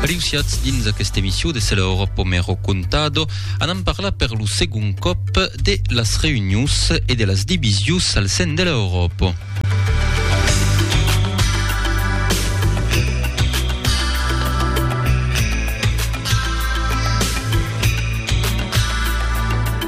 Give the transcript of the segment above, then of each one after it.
Reussiatz dins aquesta emissió de Cela ora po me ro contado, anam parlar per lo segon còp de las reunions e de las divisions al sen de l'Euròpa.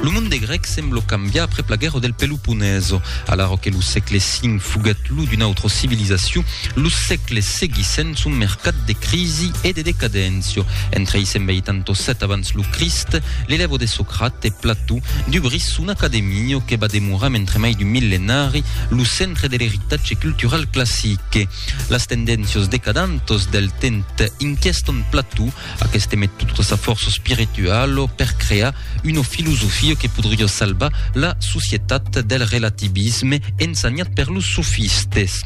Lo monde grèc semblo cambiar après la guerra del pelotó. Japonesa. Alara que lo sègle V foguèt lo d'una autra civilizacion, los sègles seguissent son mercat de crisi e de decadéncia. Entre 687 abans lo Crist, l'elèvo de Socrate, Plató, dubrís son academia que va demorar mentre mai d'un millenari lo centre de l'eritatge cultural classique. Las tendéncias decadantas del temps inquiestan Plató, Aqueste met tota sa fòrça espirituala per crear una filosofia que podriá salvar la societat del relativisme ensenhat per los sofistes.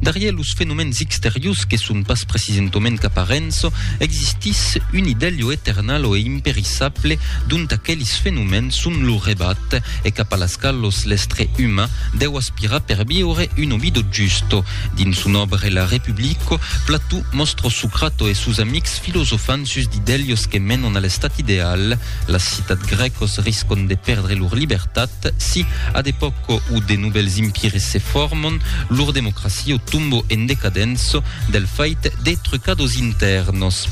Darrièr los fenomèns exteriors que son pas precisentament qu'aparenç, existís un idèlho eternal e imperissable dont aquelis fenomèns son lo rebat e cap a las qualos l'estre uman deu aspirar per viure una vida justa. Dins son òbre La Republico, Plató mòstra Socrato e sos amics filosofant sus d'idèlios que menon a l'estat ideal. Las citat grècos riscon de pèrdre lor libertat si, a d'epòca o de novèls impires se formon, lor democracia o tombo en decadença del fait de trucados intèrnos.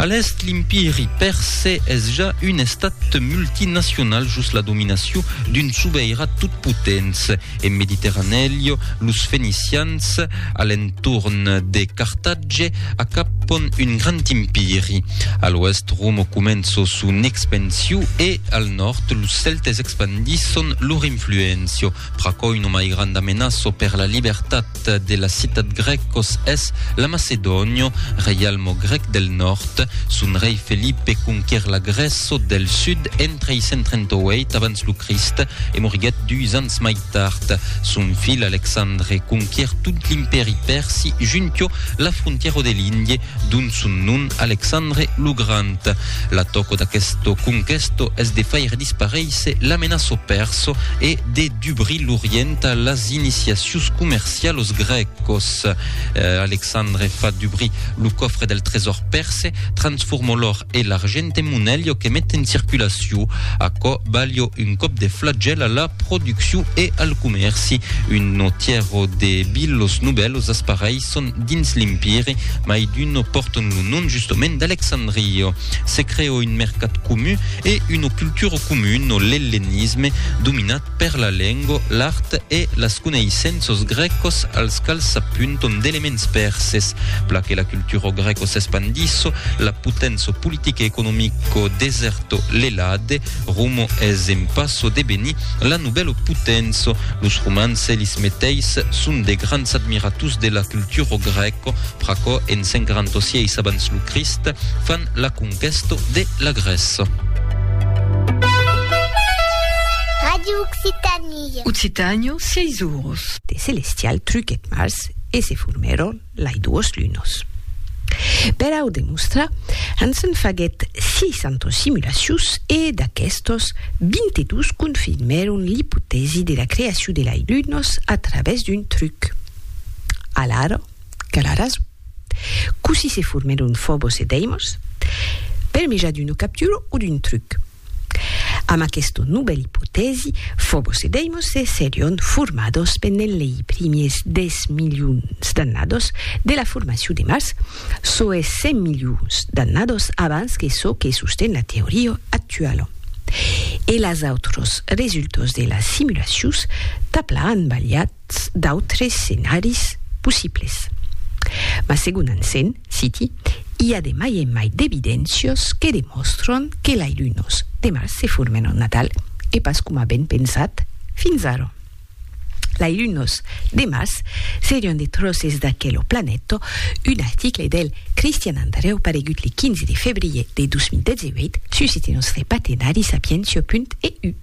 A l'Èst, l'Impiri Pèrse es ja un estat multinacional jos la dominacion d'un sobeirat totpotents. En Mediterranèlio, los fenicians, a l'entorn de Cartatge, acapon un grand impiri. A l'oèst, Romo començo son expansiu e, al nòrd, los Celtes expandisson lor influéncia. Pr'aquò, una mai granda menaço per la libertat nòrd de la citat grècos es la Macedònio, reialmo grèc del nòrd. Son rei Felipe conquer la Grèço del sud en 338 abans lo Crist e moriguèt dus ans mai tard. Son filh Alexandre conquer tot l'Impèri Pèrsi junto la frontièro de l'Indie, dont son nom Alexandre lo Grand. L'atòco d'aquesto conquesto es de faire disparéisser l'amenaço pèrso e de dubrir l'Orient a las iniciacions comercialos grècos. Alexandre fa dubrir lo cofre del tresòr pèrse, transforma l'òr e l'argent en monelh o que met en circulacion. Aquò balha un còp de flagèl a la produccion e al comèrci. Un notièro de bilhos novèlos espareis son dins l'Empire, mai d'uno pòrton lo nom justomènt d'Alexandrio. Se crèo un mercat comun e una cultura comuna, l'ellenisme, dominat per la lenga, l'art e las coneissenças grècas als quals s'apuntan d'elements perses. Pla que la cultura grèca s'espandissa, la poténça politica e economica desèrta l'Elade, Romo es en passo de venir la novèlo potenço. Los romans elis meteis son de grands admirators de la culturo grèco, pr'aquò en 146 abans lo Crist fan la conquèsto de la Grèça. Radio Occitanie. Occitània, sièis oros. De celestial truquèt Mars e se formèron. lai duos lunos. Per au demostrar, ans en faguèt 600 simulacions e, d'aquestos, 22 confirmèron l'ipotèsi de la creacion de lai lunos a travèrs d'un truc. Alara, qu'a la rason. Cossí se formèron Fobos e Deimos? Per meja d'una captura o d'un truc? Amb aquesta novèla ipotèsi, Fobos e Deimos se serion formados pendent lei primiers dètz milions d'annados de la formacion de Mars, çò es cent milions d'annados abans que çò que sosten la teoria actuala. E las autras resultas de las simulacions, tabla an balhat, Quauquarrats d'autres scenaris possibles. Mas segon Hansen, citi, i a de mai en mai d'evidéncios que demòstron que lai lunos de Mars se formen en Natal e pas coma avèn pensat fins ara. Lai lunos de Mars serion de tròces d'aquelo planeta, un article del Christian Andreu paregut le 15 de febrier de 2018 sus este nòstre patenari Sapientiae.eu.